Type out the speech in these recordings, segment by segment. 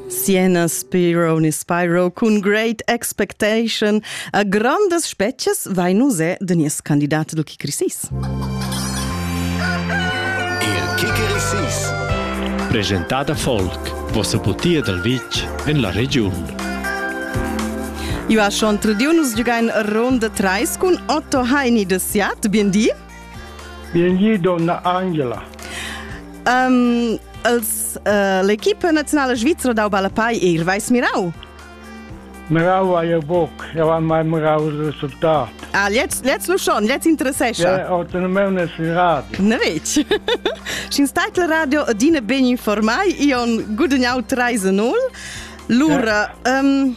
Siena Spiro ni Spyro cun Great Expectation a grandas spezias vai nus è de nies candidat do Kikrisis. Il Kikrisis Presentada Folk vossa butia dal vitg en la regiun. Io ha schon tradiu nus giugain ronda 3 cun Otto Heini de Siat. Bien di. Bienvenue donna Angela. Um, els, uh, l'equipa nazionale svizzera dau balapai ir vais mirau. Mirau a je boc, ja vam mai mirau il risultat. Ah, jetzt, jetzt lu schon, jetzt interessescha. Ja, autonomene si radio. Ne vec. Scin stai radio adine ben informai, ion gudagnau 3-0. Lura, ja. um,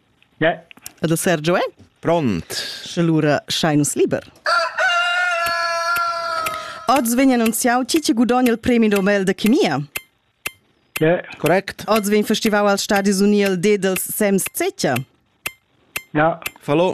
E da Sergio è? Pront. Sche lura schai nus liber. Oz vegn annunziau chi che gudogna il premi Nobel de chemia. Yeah. Correct. Oz vegn festivau als Stadis Unii il D dels Sems Zecher. Ja. Fallo.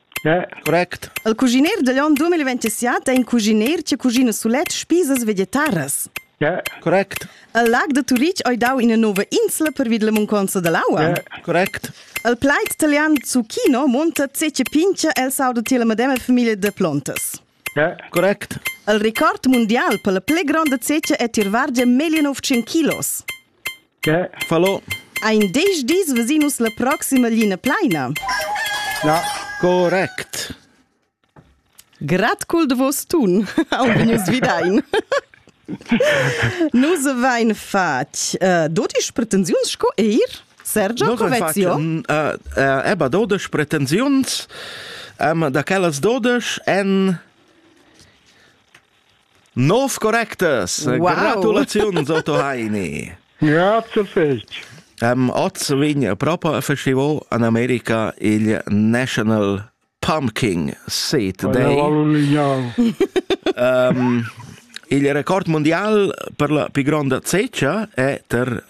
Correct. Il cuschiner digl onn 2027 è in cuschiner che cuschina sulet spisas vegetaras. Correct. Il lag da Turitg ha dau ina nova insla pervid la munconza dall'aua. Correct. Il plaid italian zucchino monta tse pincha el sauda tier la medema famiglia de plontas. Correct. Il record mundial per la pli gronda zecia è tir vargia 1900 kilos. Che fallo? Ein diesch dis vesin nus la proxima lina pleina. Na, correct. Grad cul de vos tun, aunc nus videin. Nus vein fatg uh, dodisch pretensiuns sco eir Sergio Covezio. Eba dodisch pretensiuns, um, da quellas dodisch en Nov correctas! Wow. Gratulaziuns, Otto Heini! Grazie fetg! Um, oz vegn propo a festival in America il National Pumpkin Seat Day. um, il record mondial per la più grande ceccia è ter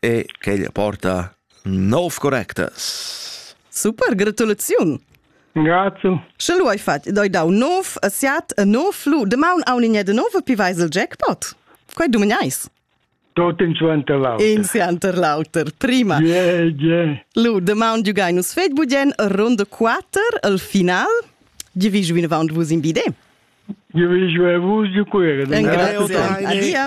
e quel porta nov correctas. Super, gratulaziun! Grazie. Sche lu hai fatg, doi dau nov a siat e nov lu demaun aun in de nov pi vais il jackpot. Quei du meneis. Tot in suenter l'auter. In suenter l'auter, prima. Yeah, yeah. Lu, demaun giugai nus fetg budien ronda 4 al final. Gi vi giu vinavant vus in bide. Gi vi giu vus giu cuire. Grazie. Adia.